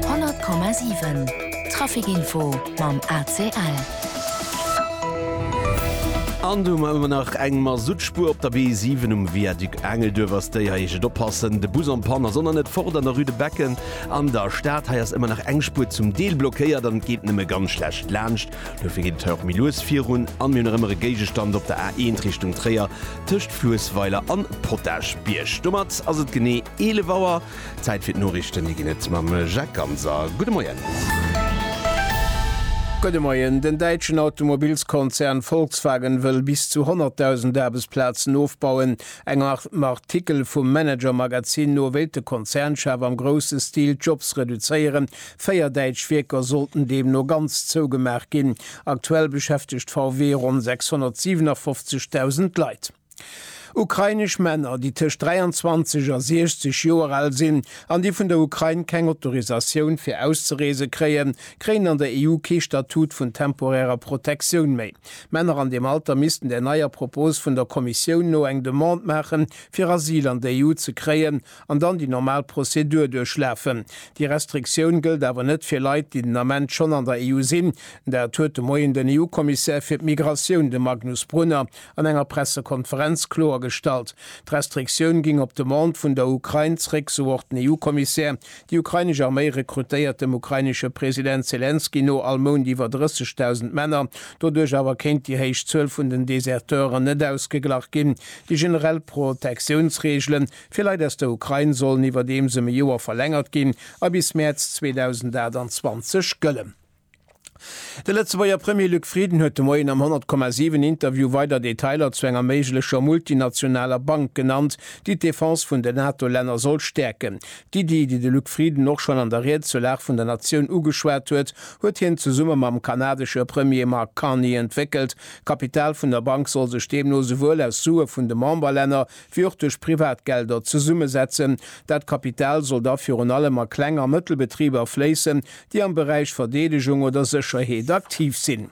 100,7 Trafic Info mam ACL. An do hu mer nach eng Masuttspuer op der B7 um Viaduc Engelduerf. Ass déi hei, heescht et oppassen. De Bus en panne ass an der Net fort an der Rue de Becken an der Stad. Hei ass ëmmer nach eng Spuer zum Deel blockéiert an et geet nëmme ganz schlecht laanscht. Dofir geet et hei och méi lues virun. An mir hunn nach ëmmer e Géigestand op der A1 Richtung Tréier. Tëscht Fluessweiler an Potagebierg. Domat ass et genee 11 Auer. Zäit fir d'Noriichten. Déi ginn et mam Jacques Ganser. Gudde Moien. Gudde Moien. Den däitschen Automobilskonzern Volkswagen wëll bis zu 100.000 Aarbechtsplazen ofbauen. Engem Artikel vum Manager-Magazin no wéilt de Konzernchef am grousse Stil d'Jobs reduzéieren. Véier däitsch Wierker sollten deemno ganz zougemaach ginn. Aktuell beschäftegt VW ronn 657.000 Leit. Ukrainesch Männer, déi tëscht 23 a 60 Joer al sinn an déi vun der Ukrain keng Autorisatioun fir auszereese kréien, kréien an der EU kee Statut vun temporärer Protektioun méi. Männer an deem Alter missten der neier Propos vun der Kommissioun no eng Demande maachen, fir Asyl an der EU ze kréien, an dann déi normal Prozedur duerchlafen. Déi Restriktioun gëllt awer net fir Leit, déi den Ament schonn an der EU sinn. Dat huet de Moien den EU-Kommissär fir d'Migratioun, de Magnus Brunner, an enger Pressekonferenz kloergestallt. D'Restriktioun géing op Demande vun der Ukrain zeréck, sou och den EU-Kommissär. Déi ukrainesch Arméi rekrutéiert dem ukrainesche President Selenskyj no all Mount iwwer 30.000 Männer. Doduerch awer kéint déi héich Zuel vun den Deserteuren net ausgeglach ginn. Déi generell Protektiounsreegelen Fir Leit aus der Ukrain sollen iwwerdeems ëm e Joer verlängert ginn a bis Mäerz 2028 gëllen. De Lëtzebuerger Premier Luc Frieden huet de Moien am 100,7 Interview weider Detailer zu enger méiglecher multinationaler Bank genannt, déi d'Defense vun den NATO-Länner soll stäerken. D'Iddi, déi de Luc Frieden och schonn an der Ried zur Lag vun der Natioun ugeschwat huet, huet hien zesumme mam kanadesche Premier Mark Carney entwéckelt. D'Kapital vun der Bank soll sech deemno souwuel aus Sue vun de Memberlänner wéi och duerch Privatgelder zesummesetzen. Dat Kapital soll da virun allem a Kleng a Mëttelbetriber fléissen, déi am Beräich Verdeedegung oder Sécherheet aktiv sinn.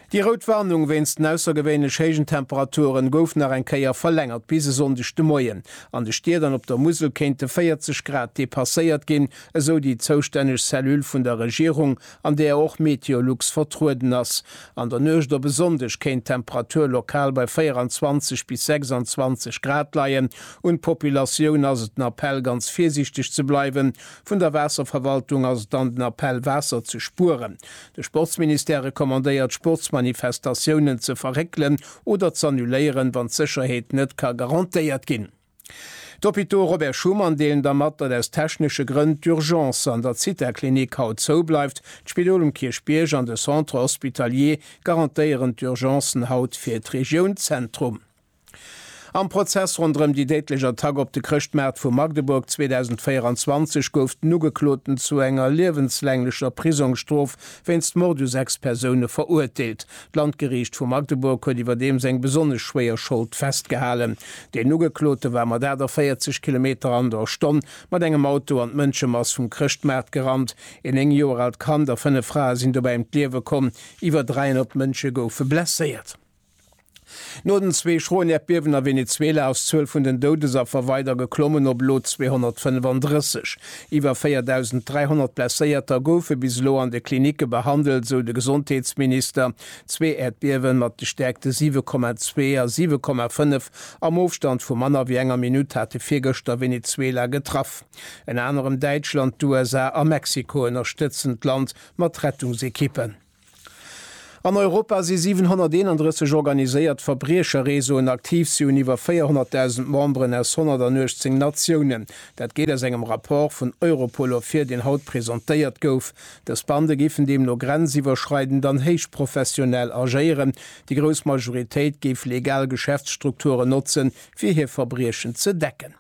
Déi rout Warnung wéinst den aussergewéinlech héijen Temperaturen gouf nach eng Kéier verlängert bis e Sonndeg de Moien. An de Stied an op der Musel kéinte 40 Grad depasséiert ginn, esou déi zoustänneg Cellule vun der Regierung an där och Meteolux vertrueden ass. An der Nuecht op e Sonndeg kéint d'Temperatur lokal bei 24 bis 26 Grad leien. Un d'Populatioun ass et den Appell, ganz virsiichteg ze bleiwen. Vun der Waasserverwaltung ass et dann den Appell, Waasser ze spueren. De Sportsministère recommandéiert, Sportsmanifestatiounen ze verréckelen oder z'annuléieren, wann d'Sécherheet net ka garantéiert ginn. D'Hôpitaux Robert Schuman deelen da mat, datt aus technesche Grënn d'Urgence an der Zithaklinik haut zou bleift. D'Spidol um Kierchbierg an de Centre hospitalier garantéieren d'Urgencen haut fir d'Regioun Zentrum. Am Prozess ronderëm déi déidlech Attack op de Chrëschtmaart vu Magdeburg 2024 gouf den Ugekloten zu enger liewenslänglecher Prisongsstrof wéinst Mord u sechs Persoune verurteelt. D'Landgeriicht vu Magdeburg huet iwwerdeems eng besonnesch schwéier Schold festgehalen. Deen Ugeklote war mat 48 Kilometer an der Stonn mat engem Auto an d'Mënschemass vum Chrëschtmaart gerannt. Een 9 Joer aalt Kand a 5 Frae sinn dobäi ëm d'Liewe komm, iwwer 300 Mënsche goufe blesséiert. No den zwee schroen Äerdbiewen a Venezuela ass d'Zuel vun den Doudesaffer weider geklommen op elo 235. Iwwer 4.300 Blesséierter goufe bis elo an de Klinicke behandelt, sou de Gesondheetsminister. Zwee Äerdbiewe mat de Stäerkte 7,2 a 7,5 am Ofstand vu manner wéi enger Minutt hate virgëschter Venezuela getraff. Ënner anerem Däitschland, d'USA a Mexiko ënnerstëtzen d'Land mat Rettungsekippen. An Europa si 731 organiséiert Verbriecherreseauen aktiv. Si hunn iwwer 400.000 Memberen aus 118 Natiounen. Dat geet aus engem Rapport vun Europol ervir, deen haut presentéiert gouf. Dës Bande géifen deemno grenziwwerschreidend an héichprofessionell agéieren. Déi grouss Majoritéit géif legal Geschäftsstrukturen notzen, fir hir Verbriechen ze decken.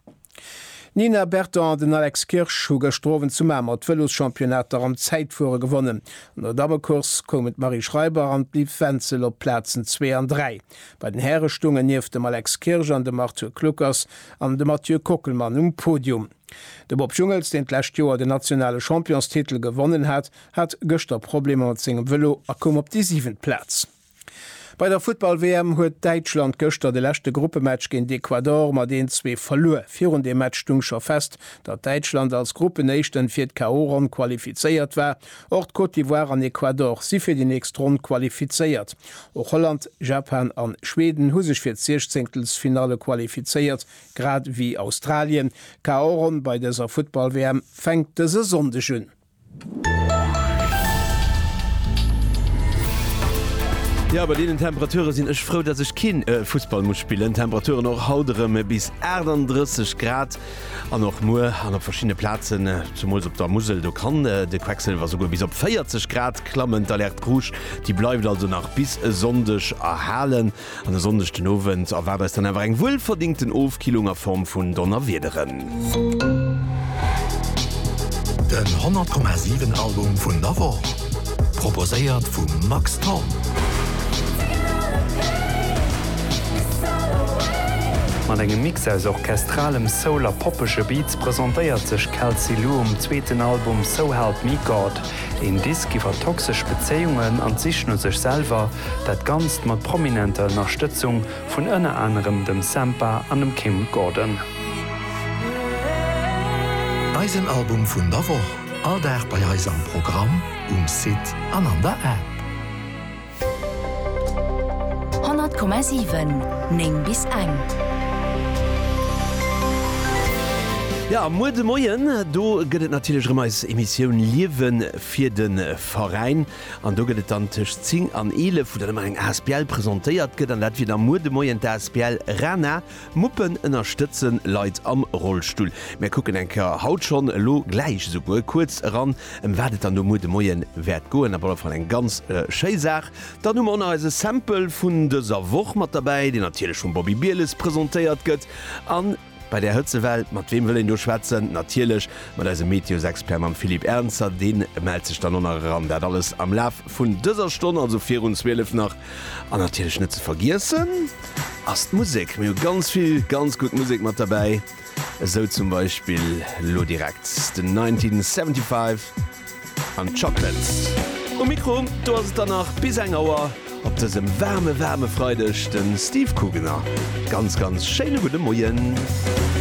D'Nina Berton an den Alex Kirsch hu gëschter Owend zu Mamer d'Vëloschampionnat am Zäitfuere gewonnen. An der Dammecourse koumen d'Marie Schreiber an d'Liv Wenzel op d'Plazen zwee an dräi. Bei den Häre stoungen nieft dem Alex Kirsch an dem Arthur Kluckers an de Mathieu Kockelmann um Podium. De Bob Jungels, deen d'lescht Joer den nationale Championstitel gewonnen hat, hat gëschter Problemer mat sengem Vëlo a koum op déi siwent Plaz. Bei der Futtball-WM huet Däitschland gëschter de leschte Gruppematch géint Ecuador mat 1-zwee verluer. Virun deem Match stung scho fest, datt Däitschland als Gruppenéischten fir d'KO-Ronn qualifizéiert war. Och d'Côte d'Ivoire an Ecuador si fir déi nächst Ronn qualifizéiert. Och Holland, Japan an Schweden hu sech fir d'Siechzéngtelsfinalle qualifizéiert, grad ewéi Australien. D'KO-Ronn bei dëser Futtball-WM fänkt dëse Sonndeg un. Jo, bei deenen Temperature sinn ech frou, dass ech keen Fussball muss spillen. Temperaturen och haut erëm bis 38 Grad an och muer an op verschiddene Plazen, zumools op der Musel, do kann de Quecksilwer souguer bis op 40 Grad klammen. D'Alerte rouge, déi bleift also nach bis e Sonndeg erhalen. An e Sonndeg den Owend erwaart eis dann awer eng wuelverdingten Ofkillung a Form vun Donnerwiederen. Den 100,7 Album vun der Woch, proposéiert vum Max Thorn. Mat engem Mix aus orchestralem Soul a poppege Beats presentéiert sech Kelsey Lu um zweeten Album So Help Me God. Een Disk iwwer toxesch Bezéiungen an d'Sich no sech selwer, Dat Ganzt mat prominenter Ënnerstëtzung vun ënner anerem dem Sampha an dem Kim Gordon. Eisen Album vun der Woch, all Dag bei eis am Programm, um Site an an der App. 100,7, 9 bis eng. Jo, muer de Moien, do gëtt et natierlech erëm eis Emissioun Liewe fir de Veräin. An do gëtt et dann tëscht 10 an 11, wou dann ëmmer eng Asbl presentéiert gëtt. An dat wier da muer de Moien d'Asbl Rana. Muppen ënnerstëtze Leit am Rollstull. Mir kucken eng Kéier, haut schonn, elo gläich esouguer kuerz eran, ëm wat et dann do muer de Moie wäert goen. Op alle Fall eng ganz schéi Saach. Dann hu mer och nach eise Sample vun dëser Woch mat derbäi, deen natierlech vum Bobby Bieles presentéiert gëtt. An. Bei där Hëtzewell, mat weem wëll een do schwätzen? Natierlech mat eisem Meteosexpert, mam Philippe Ernzer. Dee mellt sech dann och nach eran. Dat alles am Laf vun dëser Stonn, also virun 12 nach. An natierlech net ze vergiessen ass d'Musek. Mir hu ganz vill ganz gutt Musek mat derbäi, esou zum Beispill elo direkt den 1975. An d'Chocolates. Um Mikro, do ass et dann nach bis eng Auer op dësem waarme waarme Freideg, de Steve Kugener. Ganz ganz schéine gudde Moien.